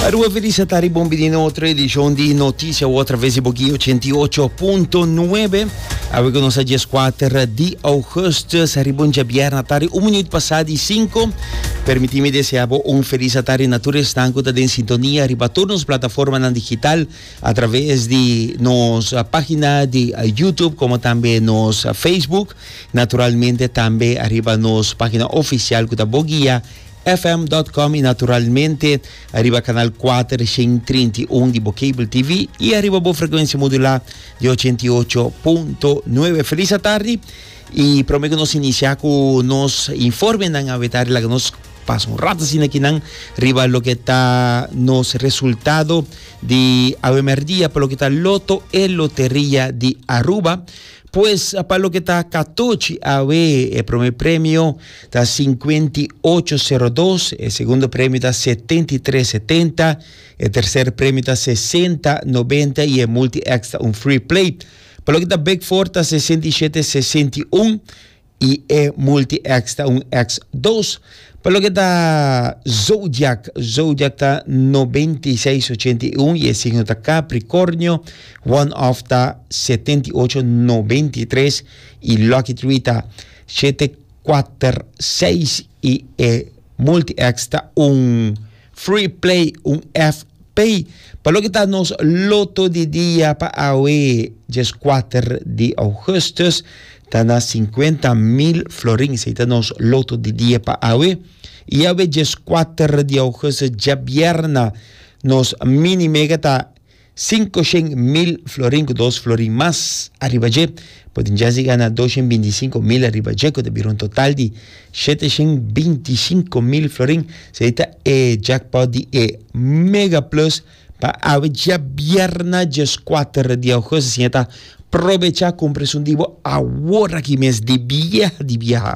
Aruba Felisa tari bon bini na otro edishon di Notisia Otra Vez di Boki 88.9. Awe ku nos a dies kuater di augustus, riba un djabierna tari un minuut pasá di sinku. Permití mi desea bo un Felisa tari na tur esnan ku ta den sintonia riba tur nos plataformanan digital atraves di nos página di Youtube komo tambe nos Facebook. Naturalmente tambe ariba nos página ofisial ku ta Bogia FM dot com y naturalmente ariba canal cuater shen trinta y un di bo cable TV y ariba bo frecuencia modulá di ochenta y ocho punto nueve. Feliz atardi y prome cu nos inicia cu nos informenan avetari laga nos pasa un rato asina kinan riba loke ta nos resultado di awe merdia pa loke ta Loto e Loteria di Aruba. Pues pa loke ta katochi awe e prome premio ta cincuenta y ocho cero dos, e segundo premio ta setenta y tres setenta, e tercer premio ta sesenta noventa y e multi X ta un free play. Pa loke ta big four ta sesenta y siete sesenta y un y e multi X ta un X dos. Pa loke ta zodiac, zodiac ta noventa y seis ochenta y un y e signo ta Capricornio, one off ta setenta y ocho noventa y tres y lucky three ta siete kuater, seis i e multi-X ta un free play, un FP. Pa loke ta nos loto di dia pa awe, dieskuater di ougustus, ta na sinkuenta mil florin. Esei ta nos loto di dia pa awe. I awe dieskuater di ougustus, djabierna, nos mini mega ta Sinku shen mil florin ku dos florin mas ariba dje, bo tin chans di gana dos shen binti i sinku mil ariba dje, ku ta bira un total di shete shen binti i sinku mil florin. Esei ta e jackpot di e Mega Plus pa awe djabièrnè dieskuater di ougust, asina ta probechá kumpra esun di bo aworakí mes, di bieha di bieha!